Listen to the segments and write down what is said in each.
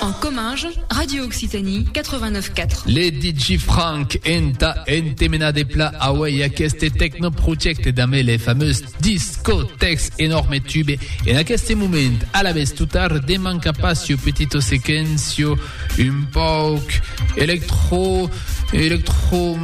En Comminges, Radio Occitanie 89 4. Les DJ Frank enta entemena de pla away aqueste techno projecte damé les fameuses discotex enorme tube en aqueste moment a la vez tutar de manca passio petito sequencio Un pauc electro, electro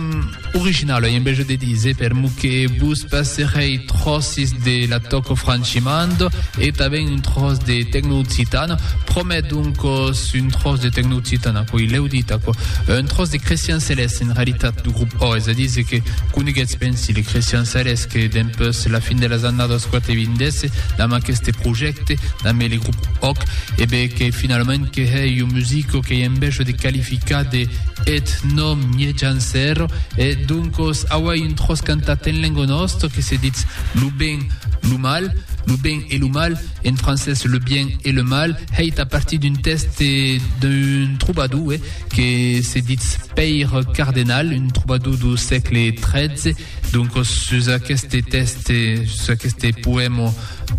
original, en vez de dire per mo que vos passerei trossis de la toco franchimando e taven un tros de tecno occitana, promet donc un tros de tecno occitana, coi l'eu dit, aquò, un tros de Christian Celeste en realitat du grup O, és a dir que coneguetz pensi le Christian Celeste que dempeus la fin de las annadas 80 desse damb aqueste projècte, damb le grup Oc, e ben que finalament, que hèi un musico qu'ei en bèsho de qualificar de ethno-miejancèro e doncos auei un tròç cantat en lengo nòsto que se ditz lo ben, lo mal, lo ben e lo mal, en francés le bien et le mal, hèit a partir d'un tèxte d'un trobador que se ditz Pèire Cardenal, un trobador do sègle 13. Doncos sus aqueste tèxte, sus aqueste poèmo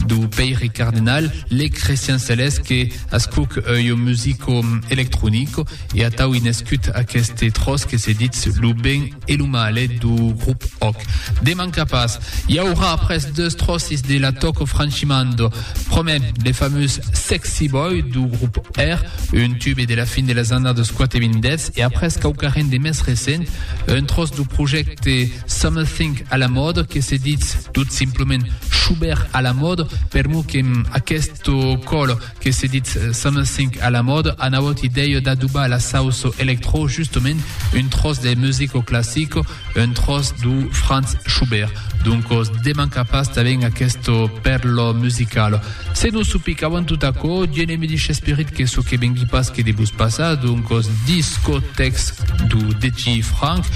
do Pèiri Cardinal, lèc Crestian Celès que ascuc ua musico electronico e atau i nescut aqueste tròç que se ditz lo ben e lo male do grup Òc. Deman capàs, i aurà après deus tròcis de la Tòco Francimando, Promet, le fameux Sexy Boy du grup Air, un tube de la fin de las annadas 80 e après quauquarren de més recent, un tros du projècte Something à la mode que se ditz tot simplement Schubert à la mode, per mo que aquest còl que se ditz Something à la mode anavòt idèia d'adobar la sauce electro justament un tros de musico classico, un tròç du Franz Schubert, doncos demanca pas tanben aquesto pèrlo musical. Se nos supicavan tot aquò, Dieu ne me dixe esperit que çò que vengui pas que de vos passar, doncos discotècs du dechi Frank,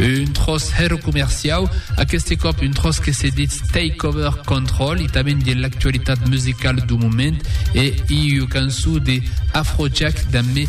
un tròç hèro comerciau, aqueste còp un tròç que se ditz Takeover Control e tanben de l'actualitat musicala du moment e iu canço de Afrojack damb me